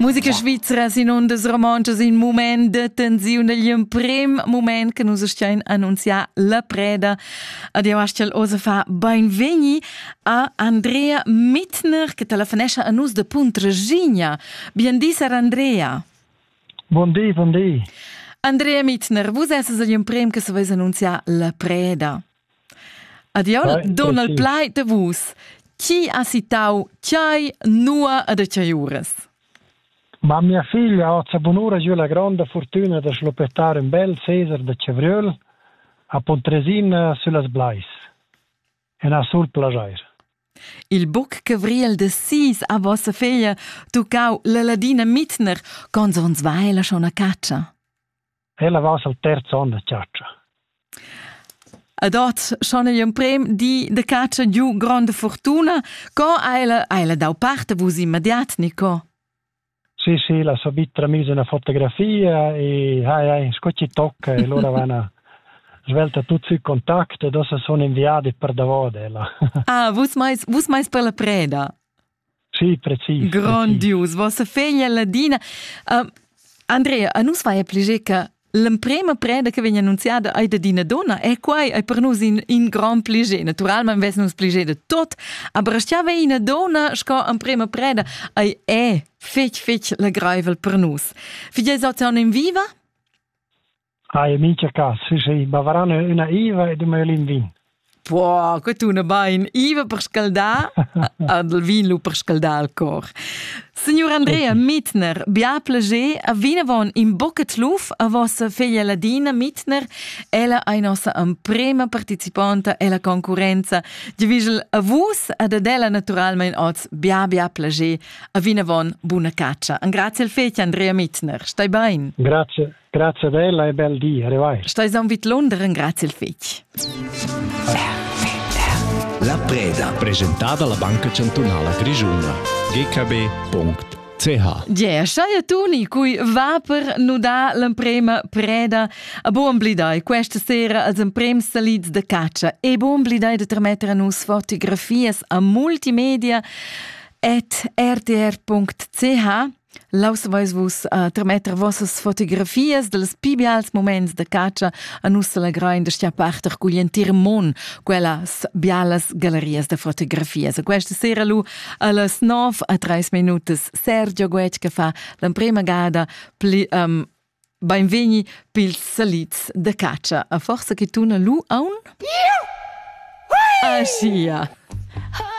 Musica svizra sin ondas romontschas in moment de tensiun degli emprim moment che nus stian annunziar la preda. Adio Astel Osefa, beinvegni a Andrea Mittner che telefonesca a nus de Puntraginia. Bien di sar Andrea. Buon di, buon di. Andrea Mittner, vus esses agli emprim che se vais annunziar la preda. Adiol, Donald Plaid de vus. Chi ha citau Chiai, Nua e de Chiaiuras? Ma mia figlia ha sa bunura giu la gronda fortuna da schlupettar in bel Cesar de Cevriel a Pontresina süllas Blais. En ha sul plagier. Il buc Cevriel de Sis a vossa figlia tuccau la ladina Mitner, cons ons vai la schon a caccia? Ella va al terz onn da chatscha. Ed ot schon il emprem di de catscha giu gronda fortuna. Co ha ella, ha ella dau parte vus immediat, Nico? Sì, sì, la so bitra mise una fotografia e hai, hai, scocci tocca e loro vanno svelta tutti i contatti e dopo sono inviati per davode. Ah, vus mais, vus mais per la preda? Sì, precis. Grondius, vossa feglia ladina. Uh, Andrea, a nus vai a pliger che l'emprema preda che vegn annunziada è da dina donna e quai è per nus in, in grand pliger. Naturalmente vess nus pliger de tot, aber stiava ina donna sco emprema preda è, è fetg, fetg legraivel per nus. Figlies ozion in viva? Hai in mincha cas, sì, ma varan üna Iva ed ün maiolin vin. Po, que tuna bain. Iva per scaldar, ad il vin lu per scaldar il cor. Signor Andrea Mittner, bia plager, a vinavon in boccat luf a vossa figlia Ladina Mittner, ella ei nossa emprema participonta ella concurenza, divigel a vus ad ad ella naturalmein oz bia bia plager, a vinavon buna caccia. An grazie al fetg Andrea Mittner, stai bain. Grazie. Grazie ad ella e bel di, arrivai. Stais aun vid Londra, ringrazia il fetg. La preda. Presentada la Banca Chantunala Grischuna. gkb.com CH. Ge, schai tuni cui va per nudar l'emprema preda a buon blidai questa sera als emprems salids de caccia e buon blidai de trametter a nus fotografias a multimedia at rtr.ch Laus veis vus uh, trametter vossas fotografias dels pi bials moments de catscha a nus selegrain de stia parter cugl entir mon quellas bialas gallerias de fotografias. E questa sera lu allas 9 a 3 minutas Sergio Guetg che fa l'emprema gada pli um, Beinvegni pils salids de catscha. A forza che tuna lu aun? Yeah! Ah, sia!